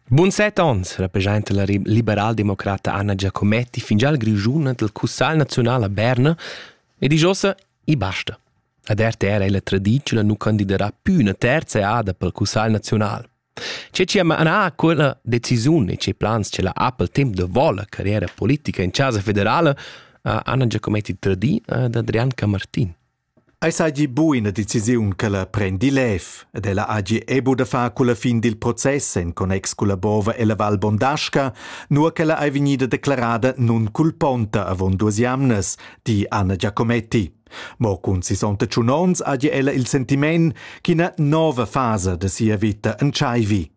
Bun set onns representa la liberaldemocrata Anna Giacometti fingià il Grischun dal Cussagl naziunal a Berna ed isch ossa i basta. Ad RTR è la tradizione nu candiderà più una terza eada pel Cussagl naziunal. C'è ci manà quella decisiun e ce plans ce la ha pel temp da vol la carriera politica in Chasa federale a Anna Giacometti tradii ad Adrian Camartin. Ei seigi buca decisiun ch'ella prendi lev ed ella hagi ebu da far culla fin dil process en connex culla bova ella Val Bondasca, nua ch'ella ei vegnida declarada nunculponta avon duas jamnas, di Anna Giacometti. Mo cun 68 onns hagi ella il sentiment ch'ina nova fasa da sia vita entscheivi.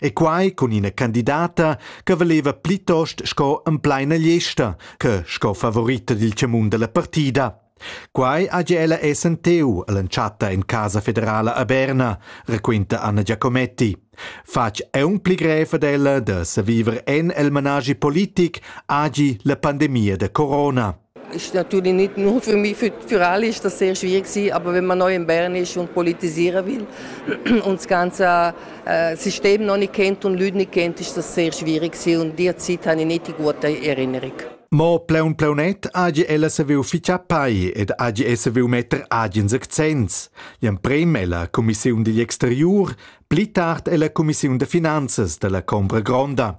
E quai cun ina candidata che valeva plitost sco empleina gliesta che sco favorita dil tgamun dalla partida. Quai hagi ella SNTU all'entschatta en Casa federala a Berna, raquinta Anna Giacometti. Fatg aunc pli grev ad ella da saviver en el managi politic hagi la pandemia da corona. Ist natürlich nicht nur für mich, für, für alle ist das sehr schwierig gewesen, aber wenn man neu in Bern ist und politisieren will und das ganze äh, System noch nicht kennt und Leute nicht kennt, ist das sehr schwierig gewesen und die Zeit habe ich nicht die gute Erinnerung. Mo pleun pleunet agi ella saviu ficha pai ed agi e saviu metter agen accents. L'emprem ella Commissiun digl exteriur, pli tard ella Commissiun de finanzas della Combra Gronda.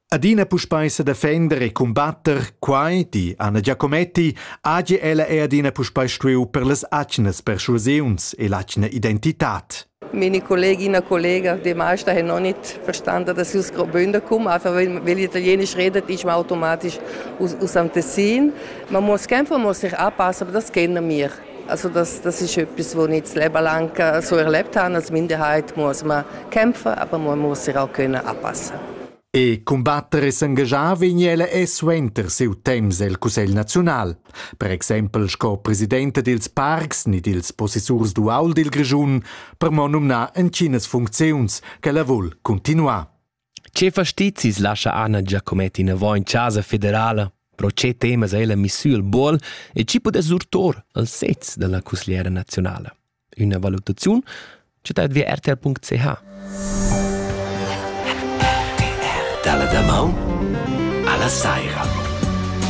Adina puspei sedefender e cumbatter quai, di Anna Giacometti, hagi ella è adina puspei stuiu per las atgnas persuasiuns e l'atgna identitad. Meine Kolleginnen und Kollegen, die meisten haben noch nicht verstanden, dass ich aus Graubünden komme. Einfach weil, weil Italienisch redet, ist man automatisch aus, aus dem Tessin. Man muss kämpfen, man muss sich anpassen, aber das kennen wir. Also das, das ist etwas, was ich nicht das Leben lang so erlebt habe als Minderheit, muss man kämpfen, aber man muss sich auch können anpassen E combattere e s'engagiar vegn ella è suenter siu temps el Cussegl naziunal. Per exempel sco presidente dils parcs ni dils possessurs dual dil Grischun, per mo numnar entginas funcziuns che la vul continuar. Che fastizis lascha Anna Giacometti inavò in chasa federala? Pro che temas ei la misura il buol e chi pudess surtor al sez dalla cusgliera nazionala? Üna valutaziun chatat via rtl.ch. Dalla damaun alla saira.